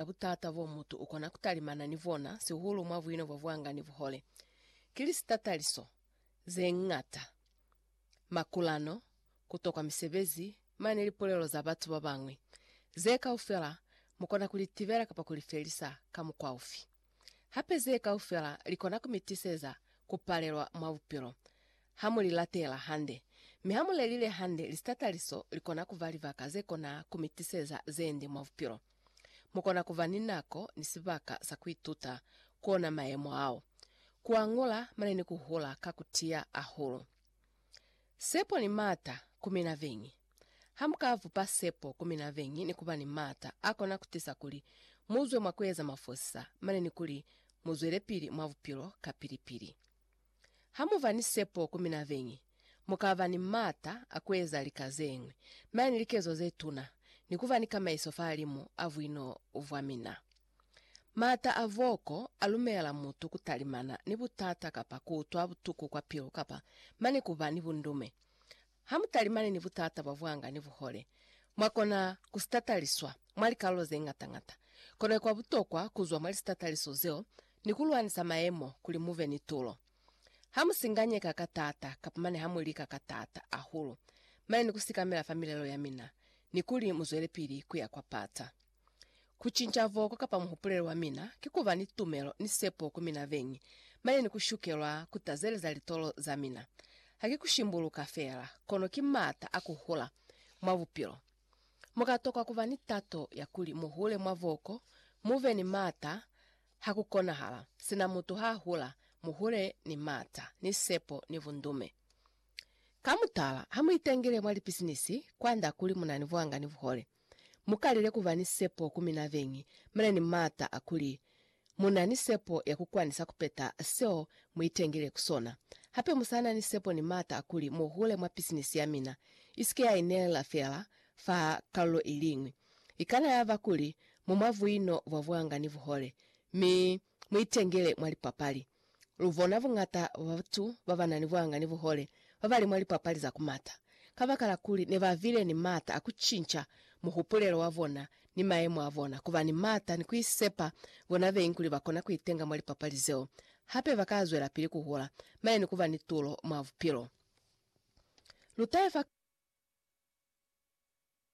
Ka butata bo mutu ukona kutalimana ni bona, sihulu mwa buino bwa buanga ni buhole, ki lisitataliso zeñata, makulano, kutokwa misebezi, mane lipulelo za batu babañwi. Ze kaufela mukona kulitibela kapa kulifelisa ka mukwa ufi? Hape ze kaufela likona kumitiseza kupalelwa mwa bupilo ha mulilatela hande. Mi hamulelile hande, lisitataliso likona kuba libaka zekona kumitiseza zeende mwa bupilo. Mukona kuba ni nako ni sibaka sa kuituta ku ona mayemo ao, kuañola mane ni kuhula ka kutiya ahulu. Sepo ni maata ku mina beñi. Hamuka bupa sepo ku mina beñi ni kuba ni maata akona kutisa kuli muzwe mwa kueza mafosisa mane ni kuli muzwelepili mwa bupilo kapili-pili. Ha mu ba ni sepo ku mina beñi, mu ka ba ni m'ata a ku eza lika ze ñwi, mi ani likezo ze tuna, ni ku ba ni kamaiso fahalimu a buino bwa mina. M'ata a boko a lumela mutu ku talimana ni butata kapa ku utwa butuku kwa pilu kapa mane ku ba ni bundume. Hamutalimani ni butata bwa bwanga ni buhole, mwakona kusitataliswa mwa likalulo zeñata-ñata. Kono ikwa butokwa kuzwa mwa lisitataliso zeo ni kulwanisa mayemo kuli mube ni tulo. Hamusinganyeka ka taata kapa mane hamulika ka taata ahulu mane ni kusikamela fa milelo yamina ni kuli muzwelepili kuya kwa pata. Ku cinca voko kapa muhupulelo wa mina ki ku ba ni tumelo ni sepo ku mina beñi, mane ni ku shukelwa ku tazeleza litolo za mina. Ha ki ku shimbuluka feela, kono ki m'ata a ku hula mwa bupilo. Mu ka tokwa ku ba ni tato ya kuli mu hule mwa voko, mu be ni m'ata ha ku konahala. Sina mutu ha hula, mu hule ni m'ata, ni sepo, ni bundume. Ka mutala, ha mu itengele mwa lipisinisi, kwand'a kuli mu na ni buhanga ni buhole. Mu kalile ku ba ni sepo ku mina beñi, mi na ni maata a kuli mu na ni sepo ya ku kwanisa ku peta seo mu itengile ku sona. Hape mu sa na ni sepo ni maata a kuli mu hule mwa pisinisi ya mina, i si ke ya inelela feela fa kalulo i liñwi. I kana ya ba kuli mu mwa buino bwa buanga ni buhole, mi Muitengele mwa lipapali. Lubona buñata bwa batu babana ni buhanga ni buhole babali mwa lipapali za kumata, kabakala kuli nebabile ni maata a kucinca muhupulelo wabona ni mayemo abona, kuba ni maata ni kuisepa bona beñi kuli bakona kuitenga mwa lipapali zeo. Hape bakazwelapili kuhola mane ni kuba ni tulo mwa bupilo. Lutahe fa.